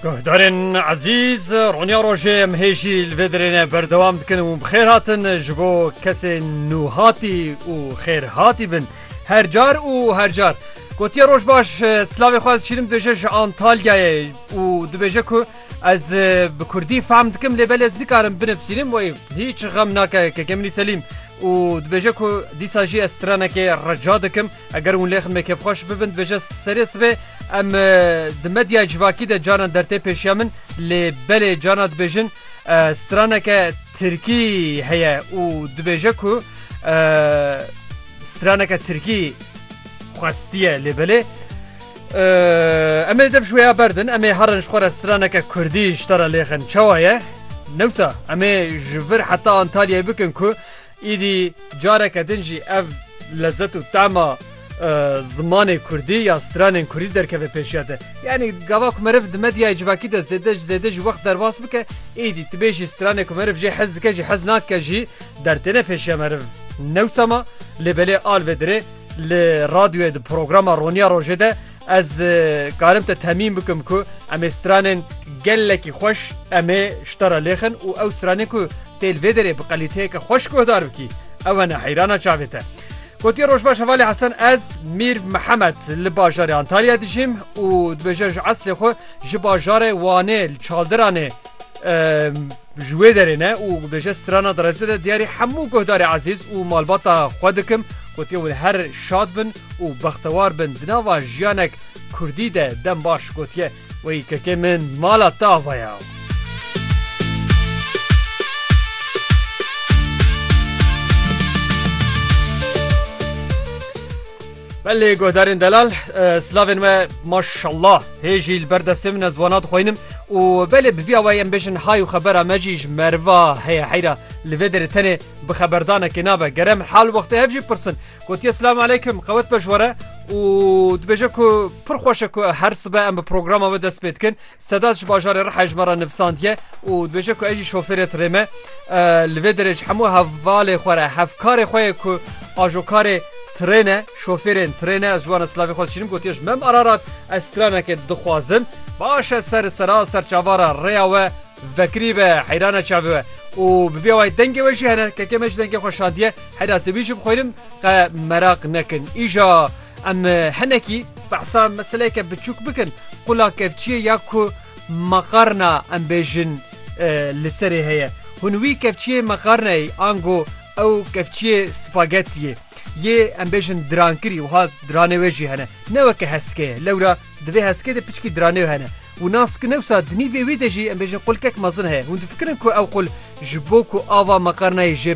Guhdarên ezîz Ronya Rojê em hê jî li vê dirêne berdewam dikin û bixêr hatin ji bo kesê nûhatî û xêr hatî bin her car û her car. Gotiye roj baş slavê xwe ez şîrim dibêje ji Antalyayê û dibêje ku ez bi Kurdî fehm dikim lê belê ez nikarim binivsînim wê hiç xem nake kekê minî Selîm û dibêje ku dîsa jî ez stranekê reca dikim Eger hûn lê xme kêfxweş bibin dibêje serê sibê em di medyaya civakî de caran dertê pêşiya min lê belê carna dibêjin straneke tirkî heye û dibêje ku straneke tirkî xwestiye lê belê em ê dev ji wêya berdin em ê herin ji xwe re straneke kurdî ji te re lêxin çawa ye newsa em ê ji vir heta Antalyayê bikin ku Îdî careke din jî ev lezet û tema zimanê kurdî ya stranên kurdî derkeve pêşiya te. Yanî gava ku meriv di medyayê civakî de zêde ji zêde jî wext derbas bike, îdî tu bêjî stranê ku meriv jê hez dike jî hez nadike jî dertêne pêşiya meriv. Newsa ma lê belê alvê dirê li radyoyê di programa Roniya Rojê de, Ez karim te temîn bikim ku em ê stranên gelekî xweş em ê ji te re lêxin û ew stranên ku tê li vê derê bi qelîteyeke xweş guhdar bikî ew hene heyrana çavê te. Gotiye Rojbaş Hevalê Hesen ez Mîr Mihemed li bajarê Antalya dijîm û dibêje ji eslê xwe ji bajarê Wanê li Çaldiranê Ji wê derê ne û bêje strana derezê de diyarî hemû guhdarê ezîz û malbata xwe dikim gotiye win her şad bin û bextewar bin di nava jiyanek Kurdî de dem baş gotiye wey kekê min mala te ava ya. Belê guhdarên delal silavên me maşallah hê jî li ber destê min ez wana dixwînim û belê bi vî awayî em bêjin hay û xebera me jî ji meriva heye heyra li vê derê tenê bi xeberdanekê nabe ger em hal wextê hev jî pirsin gotiye silam aleykum qewet be ji were û dibêje ku pir xweş e ku her sibe em bi programa we dest pê dikin Sedat ji bajarê Riha ji me re nivîsandiye û dibêje ku ez jî şofêrê tirê me. Li vê derê ji hemû hevalê xwe re hevkarê xwe yê ku ajokarê tirê ne, şofêrên tirê ne, ez ji wan re silavê xwe dişînim gotiye ji Mem Ararat ez stranekê dixwazim. Baş e ser sera ser çava re rêya we vekirî be heyran e çavê we û bi vê awayî dengê we jî hene. Kekê me jî dengê xwe şandiye heyra sê wî jî bixwînim qe meraq nekin îja. Em hinekî behsa meseleyeke biçûk bikin, qula kevçiyê ya ku maqarna em bêjin li serê heye. Hûn wî kevçiyê maqarnayî ango ew kevçiyê spagetiyê yê em bêjin dirankirî wiha diranê wê jî hene. Ne weke heske ye. Lewra di vê heskê de piçkî diranê hene. Û nas ki newsa di nîvê wî de jî em bêjin qulkek mezin heye. Hûn difikirin ku ew qul ji bo ku ava maqarnayê jê